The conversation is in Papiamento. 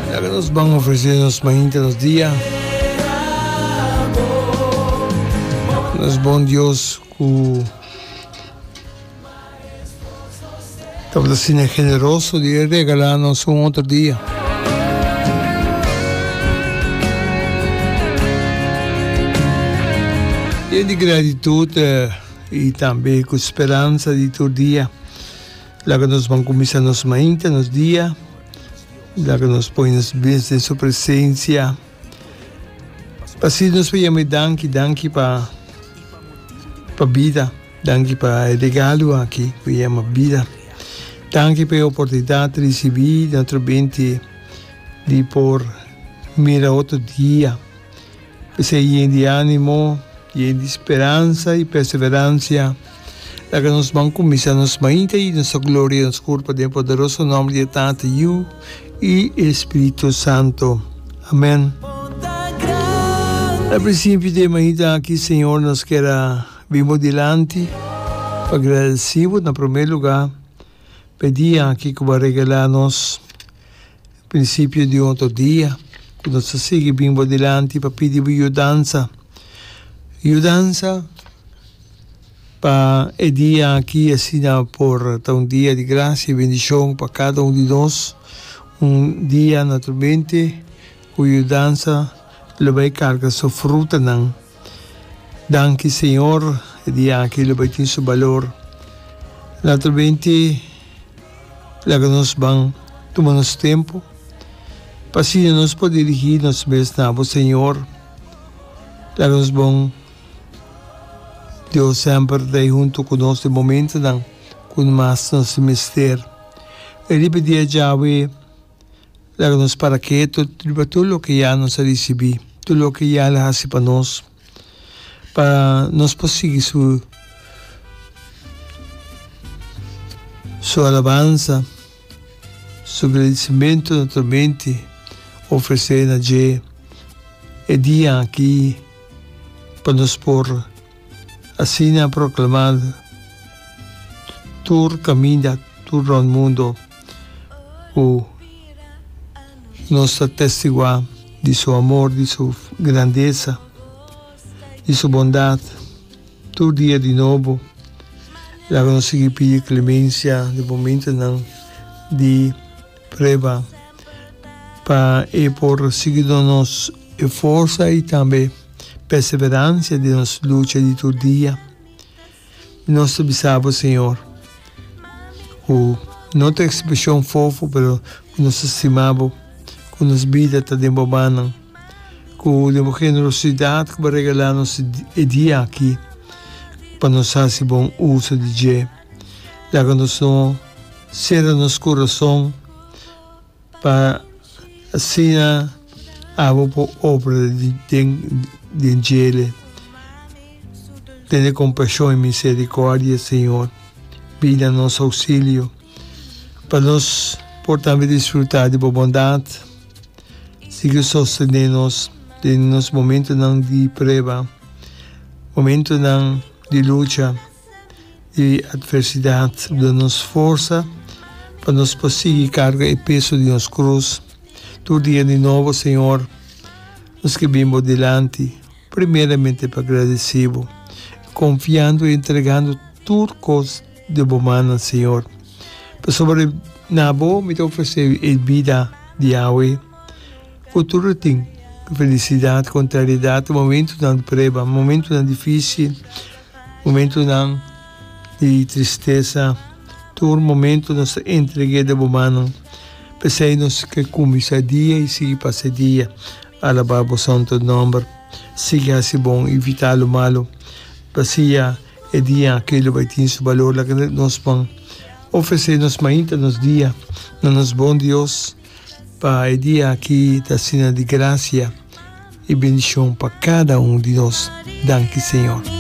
Mira ke nos ban ofresé nos mainta nos dia. Nos bon Dios ku tabata asina generoso di e regalá nos un otro dia. Yen di gratitud i tambe ku speransa di tur dia. Laga nos ban kuminsá nos mainta, nos dia, laga nos pone nos bens den su presensia, pa si nos por yam'é danki, danki pa pa bida, danki pa e regalo aki ku yama bida, danki pa e oportunidat di risibí den otro bente di por mira otro dia. P'esei yen di animo, yen di speransa i perseveransia, laga nos ban kuminsá nos mainta i nos ta gloria nos Kur pa den poderoso nòmber di e Tata, Yu i e Spiritu Santu. Amèn. Al prinsipio di e mainta aki, Señor, nos kier a bin Bo dilanti pa gradesí Bo na promé lugá pa e dia aki ku Bo a regalá nos. Principio di otro dia cu nos ta sigui bin bo dilanti pa pidi bo yudansa, yudansa pa e dia aki asina por ta un dia di gracia y bendicion pa cada un di nos, un dia naturalmente cu yudansa lo bay carga su frutanan. Danki Señor, e dia aki lo bai tin su balor. Later benti laga nos ban tuma nos tempo, pa asina nos por dirigi nos mes na Abo, Señor. Laga nos bon Dios semper ta ei hunto ku nos den momentonan ku mas nos mester. E riba dia djawe. Laga nos para ketu riba tur loke ya nos a risibí, tur loke ya el a hasi pa nos, pa nos por sigui su su alabansa, su gradisimentu na tur mente ofresé na dje e dia aki, pa nos por. Asina proklamando tur kaminda, tur rònt mundo ku nos ta testiguá di su amor, di su grandesa, di su bondat tur dia di nobo. Laga nos sigui pidi klemensia den momentunan di. prueba pa e por sigui duna nos e forsa i tambe perseveransia den nos lucha di tur dia. Nos ta bisa bo, Señor, ku no ta ekspreshon fofo, pero ku nos ta stima bo, ku nos bida ta den bo mannan, ku den bo generosidat ku bo regalá nos e dia aki pa nos hasi bon uso di dje. Laga nos no sera nos kurason pa asina abo por obra den den djele. Tene kompashon i miserikòrdia, Señor. Bini na nos ouksilio pa nos por tambe disfrutá di bo bondat. Sigui sostené nos den nos momentunan di preba, momentunan di lucha. E atversidat da nos forsa pa nos por sigui karga e peso di nos krus. Tur dia di nobo, Señor, nos ke bin Bo dilanti, primeramente pa gradesí Bo, konfiando i entregando tur kos den Bo mannan, Señor. Pasobra na Bo mi ta ofresé e bida di awe ku tur atin, felisidad, kontrariedat, momentunan di preba, momentunan difísil. Momentunan di tristesa, tur momentu nos ta entreg'é den bo mannan. P'esei nos ke kumbisa dia i sigui pasa dia alabá bo santu nòmber, sigui hasi bon i vita lo malu. Pasia e dia akí lo bai tin su balor laga den nos man. Ofresé nos mainta nos dia na nos bon Dios, pa e dia akí ta asina di grasia i bendishon pa kada un di nos. Danki Señor.